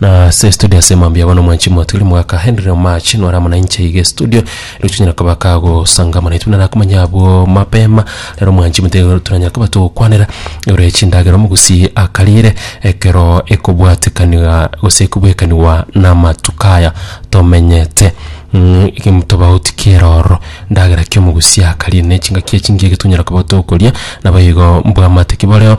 Na ase estudio ase mambia yabo nomwanchi mwatwire mwaka Henry Omache nore amo nainche iga estudio ero tonyara koba kagosangamana naintwe buna nakomanya abwo mapema rero omwanchi mote toranyara koba togokwanera ore chindagera omogusi akarire ekero ekobwatekaniga gose ekobwekanigwa namatuko aya tomenyete mm egem tobauti kere ororo ndagera ki omogusi akarire na echingaki echingige tonyara koba tokoria nabo igo mbwamate ki boreo.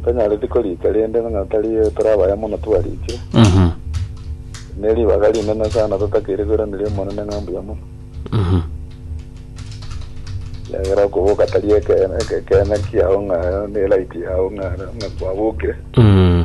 Ntanyareti korika rende ng'a tari tore abaya mono twarikire. Mhm. Ne ribaga rinene sana totakeire koiraneria Omonene ng'a mbuya mono. Mhm. Egera okoboka tari ekeene, ekeene kiao ng'a ne right yao ng'a ng'a kwabokire. Mhm.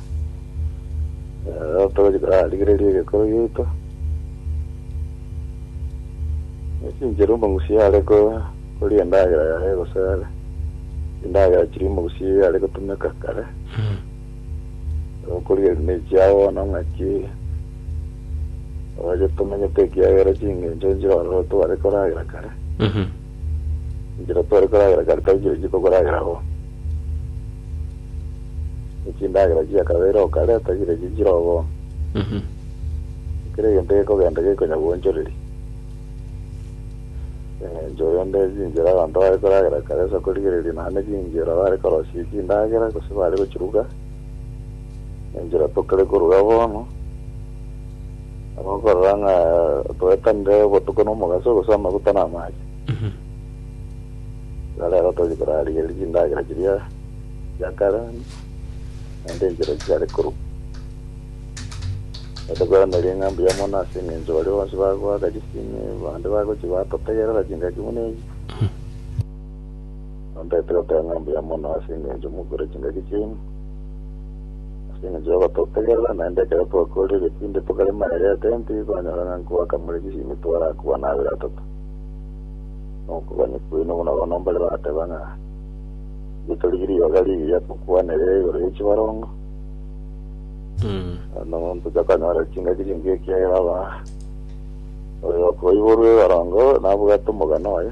Rigereria egekoro giaito esinchera omogusi are koria endagera yaye gose are chindagera chiria omogusi are gotumeka kare okoria ne chia bono ng'aki oye tomanyete ekiagera chingencho nchire ororo tware koragera kare Enchera tore koragera kare tari chire chiko koragera bo. Ne chindagera chia kabere o kare tari chire chiri chire obo. Mhm. Ne kera egento gekogenda gekonya gwonchoreri. Engencho rende chinchera abanto bare koragera kare ase okorigereria naende chinchera bare korosia chindagera gose bare gochiruga. Enchera tokare koruga bono. Gokorora ng'a twetanire obotuko na omogaso, gose amaguta na amache. Iga rero tori korarigeria chindagera chiria chia kare, naende enchera chiare korwa. Naende kweraneri ng'a mbuya mono ase eng'encho baria bonsi bagoaka chisemi, bande bagochia batotegerera chingaki buna echi. Nontaete goteba ng'a mbuya mono ase engencho mokure chingaki chiaino, ase engencho ya ogototegerera, naende ekero twakoorire egetinde tokarema aria ya tenti, twanyora ng'a nkobakang'ure chisimi twarakwa na abere atato. Na okogania kwaino buna bono mbare bagateba ng'a inche torigie ribaga rigiya tokwanere igoro ye chibarongo, na monto tokanyora chingaki chingiya ekiagera aba oyo okoiborwa ebarongo nabwate omogano oye.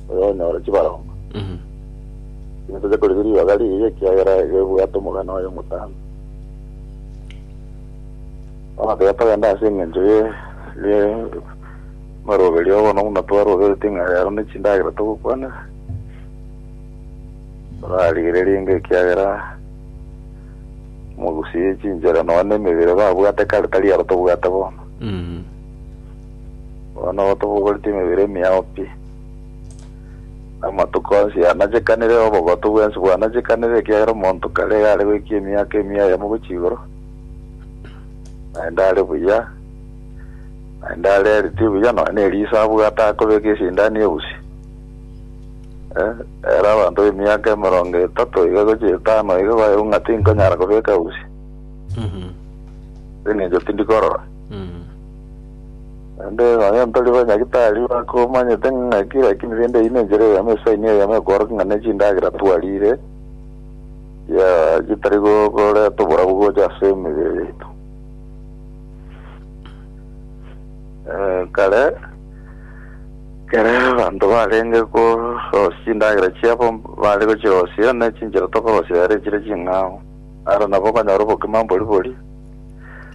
oyo onyore chibaromba. Inwe toche korigia ribaga riiye, ekiagera ribwate omogano oye omotambe. Bono tiga togende ase engencho ye ye maroberio, bono buna twaroberetie ng'a rero ne chindagera togokwanera, torarigererie inga ekiagera mogusi ye chinchera nonya ne emebere babwate kare tari aro tobwate bono. Bono tobogoretie emebere emiao pi. Amatuko onsi aanachekanire, obogotu bwensi bwanachekanire, ekiagera omonto kare iga are goikia emiaka emia eyemo gochia igoro, naende are buya, naende are healthy buya, nonya na eriso abwate akobeka esindano ya usi. Eh, ere abanto b'emiaka emerongo etato iga gochia etano iga baewu ng'a tinkonyara kobeka usi, ase eng'encho tindikorora. Naende nonya ntari banyagitari bakomanyete ng'aki, lakini rende eyio nenchera eyemo, esaini eyemo ekworokia ng'a nechindagera twarire, chia chitari go- goreta oborabu gocha ase emebere yaito. Eh, kare, kere abanto barenge korosia chindagera chiabo, bare gochirosia, ne chinchera tokorosia ere chire ching'ao. Aro nabo okonyora obogima mbori bori.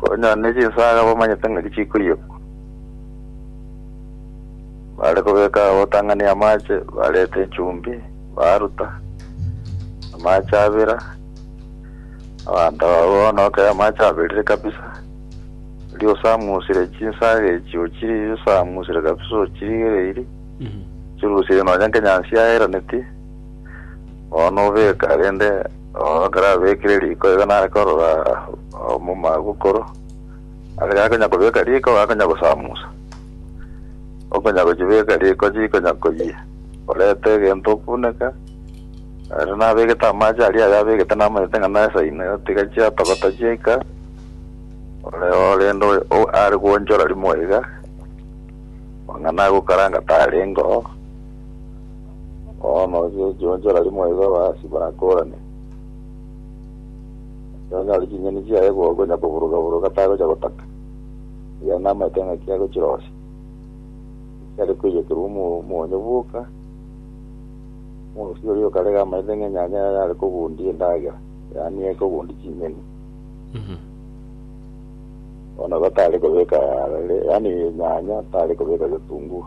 Konya ne chinsaga bamanyete ng'aki chikoiyekwa. Bare kobeka obotang'ani amache, bareta enchumbi, baruta amache abera. Abanto aba bono ekero amache aberire kabisa, erio osamusire chinsaga echio ochisamusire kabisa ochirigereiri, ochirusie nonya nkenyansi yaeraneti. Bono nobeka rende oo ekero abekire riko iga nare korora omomalaika okoro ase gakonya kobeka riko gakonya gosamusa okonya gochibeka riko chikonya koyia orete egento okuneka ere nabegete amache aria ayabegete namanyete ng'a nesaine tiga chiatogota chiaika ore oo rende oyo o are goonchora rimo iga ong'a nagokaranga tarenge oo. Bono ase ekiwanja rari moigo abahasi bakorane, ase onyore chinyeni chiaye gokonya koburuga-buruga tagocha gotaka, erio namaete ng'aki agochirosia, chiare koiyekerwa omo- omonyo bwoka, omorusi oria okarega amaete ng'a enyanya yaye are kogundia endagera, yaani are kogundia chinyeni. Mhm. Bono igo tare kobeka arere, yaani enyanya tare kobeka getunguo.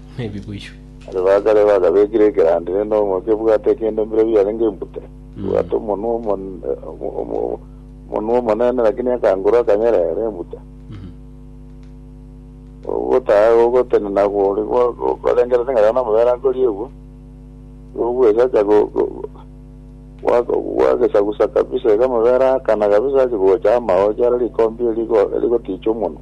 nebiboyio. Aria bakare bagabekire ekerandi rende omoke ebwate kende mbire biarenge imbute, ebwate omonwa omonwa omonene lakini akanguru akanyerere imbute. Ogotaha gogotenena gori gorengerete ng'a rero namabere akoriegwa, ogoesacha gwagesagusa kabisa iga amabere aakana kabisa ache gocha amaocho are rikombe rigoticha omonwa.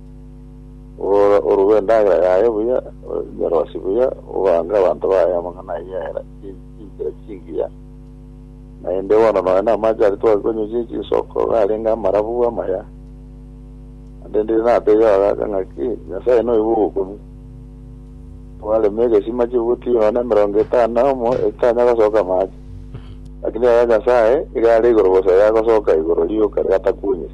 Orore orue endagera yaye buya, onyoroshe buya, ogange abanto baye amang'ana ayio era chinchera chingiya. Naende bono nonya namache aria twakonywechire chinsoko, iga arenge amarabu amaya. Naende ndire nateebie abagaaka ng'aki, Nyasae noigwe ogokunu. Twarema egesima chibuti nonya emerongo etano na omo etitanya gosoka amache. Lakini aya Nyasae, iga are igoro bosa yagosoka igoro rioka gatakunyire.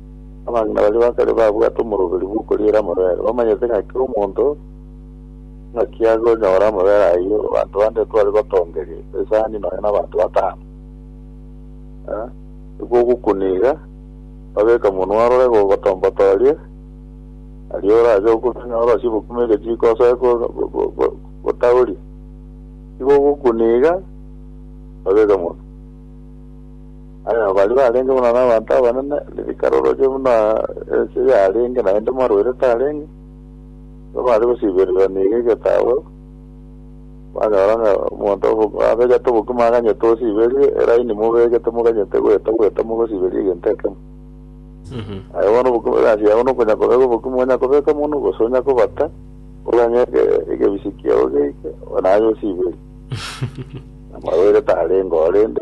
Abang'ina baria ba kare babwate omoroberi bw'okoriera amabere, bamanyete ng'a kera omonto ng'aki agonyora amabere ayio. Abanto bande tware gotongeria esani nonya na abanto batano. Eh, nigo ogokuna iga, babeke omonwa arore gogotombotoria, aria orache okuna ng'a orosie obokima egechiko osoe go- go- go- go- gotaoria. Nigo ogokuna iga, babeke omonwa. Aye baria barenge buna nabanto abanene, ririkana oroche buna ense yarenge, naende marwaire tarenge, nigo bare gosiibererwa nigo egetabo, banyora ng'a omonto obo abegete obokima aganyete osiiberie eraini mobegete moganyete goeta goeta mogosiiberia egento ekemo. Aye bono obokima egasi yabo nokonya kobeka obokima onya kobeka mono gose onya kobata, oganye ege- egebisi kiao geike, naye osiiberie. Amarwaire tarenge oo rende,